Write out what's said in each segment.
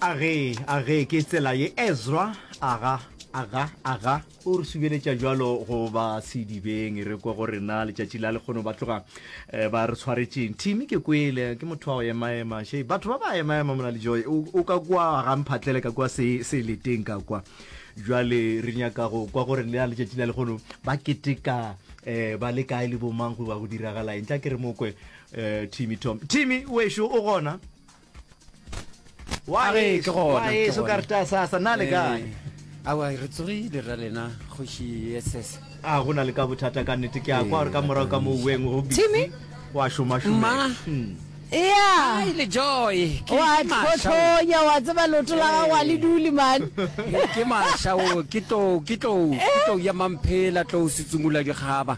a ge a ge ke tsela ye ezra aga aga aga o re subeletša jalo go ba sedibeng re kwe go rena letšatši la lekgono ba tloga eh, ba re tshwaretšeng thimi ke kwele ke motho wa go emaema she batho ba ba emaema mona le joy o o ka kwa ga mphatlele ka kwa se se leteng ka kwa jwale re nyaka go kwa gore le a letšatši la lekgono ba keteka eh, ba le kae le bomang go ba go diragala eng tla ke re mokwe Eh, Timmy Tom. Timmy, wešo o gona? Wa A re, ke gona, wa ke eso gona. ka re ta sasa, na le kae? Eh, awa re tsogile ra lena kgoši ss A go na le ka bothata ka nnete ke a kwa gore ka morago ka moo weng go busy. Timmy? Wa šoma šoma. Ma. Hmm. ea Ai, le joy ke wa ke masha o. tlhothonya wa tseba loto la gago a le dule mane Ke- ke masha o ke tlou ke tlou ke tlou ya mamphela tlou setsungula dikgaba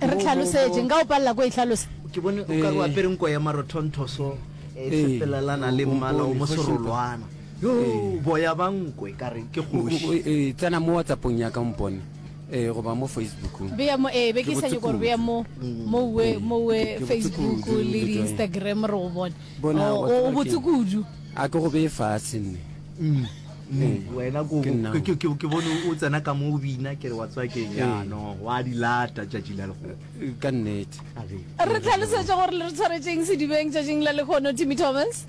E re hlalosetše, nka go palela ko e hlalosa. Ke bone o ka re o apere nko ya marothonthoso e sepelelana le mmala o moserolwana. Yo, boya ba nko e ka re ke kgoši. Tsena mo WhatsApp-ong ya ka o mpone goba mo Facebook. Bea mo, ee, be ke sa nyoko gore bea mo, mo we, mo we Facebook le di Instagram re go bone. O botse kudu. A ke go bee fase nne. wena ko- Ke nna. ke- ke- ke- ke bone o tsena ka mo o bina kere wa tswa keng yano wa di lata tšatši la lekgono ka nnete A re, re tlhalosetša gore le re tshwaretseng sedibeng tšatšing la lekgono timmy thomas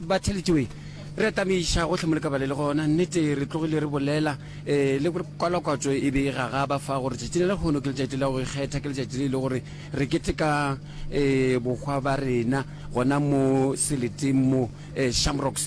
batheletšoe re atameiša gotlhe mo le ka bale le gona nnete re tlogile re bolela um le gore kwalakwatso e be e gagaba fa gore tšatši le lekgono ke letšatši la go ikgetha ke letšatši le e le gore re keteka um bokgwa ba rena gona mo seleteng mo um shamrocks